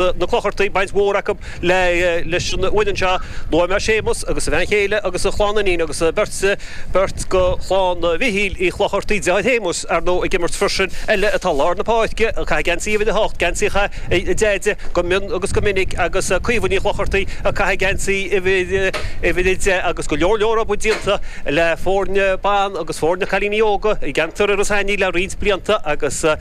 na Clochartaigh baint mhór acu leis an bhfoireann seo. Luaigh mé Séamus agus a bhean chéile agus a chlann iníon agus beirt beirt de chlann Mhichíl Uí Chlochartaigh, deartháir Shéamuis, ar ndóigh, ag imirt freisin, eile atá i lár na páirce, a chaith geansaí uimhir a hocht, geansaí a chaith a Deaide go mion agus go minic agus Caoimhe Ní Chlochartaigh a chaith geansaí uimhir a deich agus go leor leor obair déanta le foirne ban agus foirne cailíní óga i gceantar Iorras Aithneach le roinnt blianta agus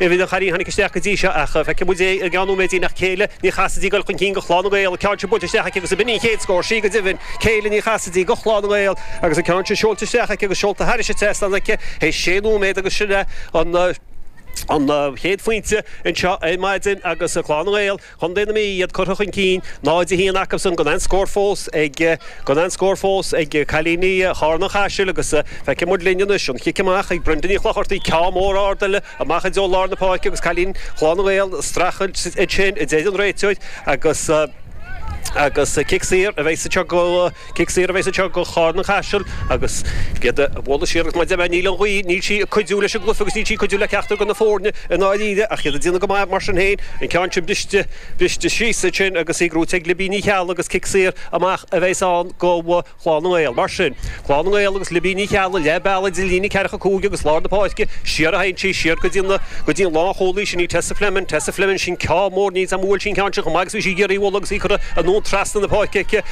Uimhir de chailíní a tháinig isteach go dtí seo ach feicfidh muid é i gceann nóiméidín ach Céilí Ní Chasaide ag dul chun cinn do Chlann na nGael, an ceann sin buailte isteach aici agus ab in í an chéad scór? Sí, go deimhin, Céilí Ní Chasaide do Chlann na nGael agus an ceann sin seolta isteach aici agus seolta thairis an trasnán aici théis sé nóiméad agus sin é an chéad phointe anseo ar maidin agus Clann na nGael Chontae na Mí, iad curtha chun cinn 0 1 acusan, gan aon scór fós ag gan aon scór fós ag cailíní Charna Caiseal agus feicfidh muid linn anois an chic amach ag Brenda Ní Chlochartaigh, ceann mór ard eile amach i dtreo lár na páirce agus cailín Chlann na nGael ag streachailt ansin a deir an réiteoir agus agus cic saor a bheas isteach go Cic saor a bheidh anseo do Charna Caiseal agus í dhá bualadh siar agus maidir leis an ngála gaoithe, níl sí ag cuidiú leis an gcluiche agus níl sí ag cuidiú le ceachtar de na foirne i ndáiríre ach iad ag déanamh go maith mar sin féin. An ceann sin briste, briste síos ansin agus í gnóite ag Libby Ní Cheallaigh agus cic saor amach a bheidh ann do Chlann na nGael. Mar sin, Clann na nGael agus Libby Ní Cheallaigh, leath bealaigh idir líne ceathracha cúig agus lár na páirce, siar a théann sí, siar go dtí na, go dtí an lánchúlaí, sin í Tessa Fleming, Tessa Fleming, sin ceann mór, níl 's agam ar bhuail sí an ceann sin chomh maith agus a bhí sí ag iarraidh a bhualadh agus í curtha anonn trasna na páirce aici.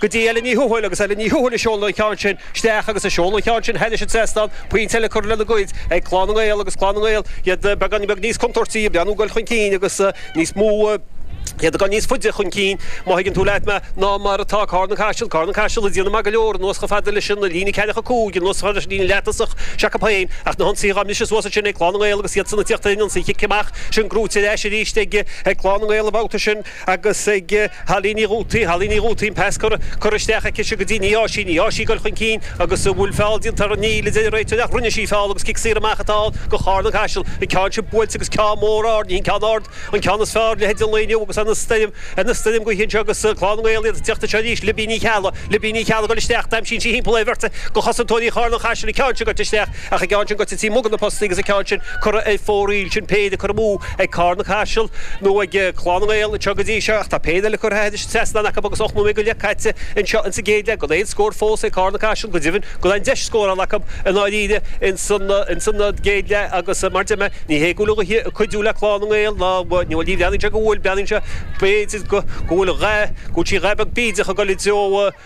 go dtí Ellen Ní Thuathail, agus Ellen Ní Thuathail ag seoladh an cheann sin isteach agus ag seoladh an cheann sin thairis an trasnán, pointe eile curtha lena gcuid ag Clann na nGael agus Clann na nGael, iad beagáinín beag níos contúirtí, ag breathnú dul chun cinn agus níos mó, iad ag dul níos faide chun cinn, má thuigeann tú leat mé, ná mar atá Carna Caiseal. Carna Caiseal ag déanamh maith go leor anuas chomh fada leis an líne ceathracha cúig, anuas chomh fada leis an líne leath-thosach s'acu féin, ach na hionsaithe dhá mbriseadh suas ansin ag Clann na nGael agus iadsan ag tíocht ar an ionsaí. An chic amach sin gnóite ar ais arís ag Clann na nGael an babhta sin. agus ag Holly Ní Dhútaí, Holly Ní Dhútaí, an pas curtha isteach aici seo go dtí Ní á sí, Ní á sí, goil chun cinn agus an bhfuil feall déanta uirthi? Níl a deir an réiteoir ach rinne sí feall agus cic saor amach atá ann do Charna Caiseal, an ceann sin buailte agus ceann mór ard, ní hin ceann ard an ceann is fearr leithéid an lae inniu agus an stoirm, an stoirm gaoithe anseo agus Clann na nGael iad ag teacht anseo arís, Libby Ní Cheallaigh, Libby Ní Cheallaigh goil isteach agus damhsaíonn sí thimpeall ar bheirt de chosantóirí Charna Caiseal an ceann sin goite isteach ach an ceann sin goite taobh amuigh de na postaí agus an ceann sin curtha ar fóraoil sin péire curtha amú ag Carna Caiseal nó ag Clann na nGael anseo go dtí seo ach tá péire eile curtha thairis an trasnán acu agus ocht nóiméad go leith caite anseo insa gcéad leath gan aon scór fós ag Carna Caiseal. Go deimhin gan aon deis scórála acu i ndáiríre insan gcéad leath agus mar a deir mé ní hé go bhfuil an ghaoth ag cuidiú le Clann na nGael ná ní bhreathnaíonn sé go bhfuil. Breathnaíonn sé b'fhéidir go bhfuil sí dhá beag bídeach ag dul i dtreo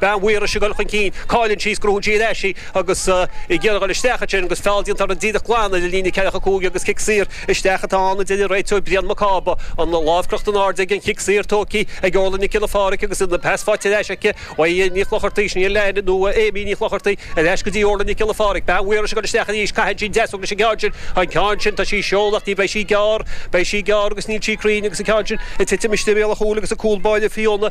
Bean Mhaorais ag dul chun cinn. Cailleann sí, gnóthaíonn sí ar ais í agus í ag iarraidh dul isteach ansin agus feall déanta uirthi díreach glan idir líne ceathracha a cúig agus cic saor. Isteach atá ann, a deir an réiteoir Brian Mac Cába, an lámh crochta in airde agus an cic saor tógtha ag Órla Nic Giolla Pháraic agus an pas faighte ar ais aici ó Aodh Ní Chlochartaigh, 's ní hea, nó Amy Ní Chlochartaigh, ar ais go dtí Órla Nic Giolla Pháraic. Bean Mhaorais ag dul isteach arís, caitheann sí deasóg leis an gceann sin, an ceann sin, tá sí ag seoladh ach beidh sí gearr, beidh sí gearr agus níl sí cruinn agus an ceann sin ag titim istigh i mbéal a chúil agus an cúl báire Fiona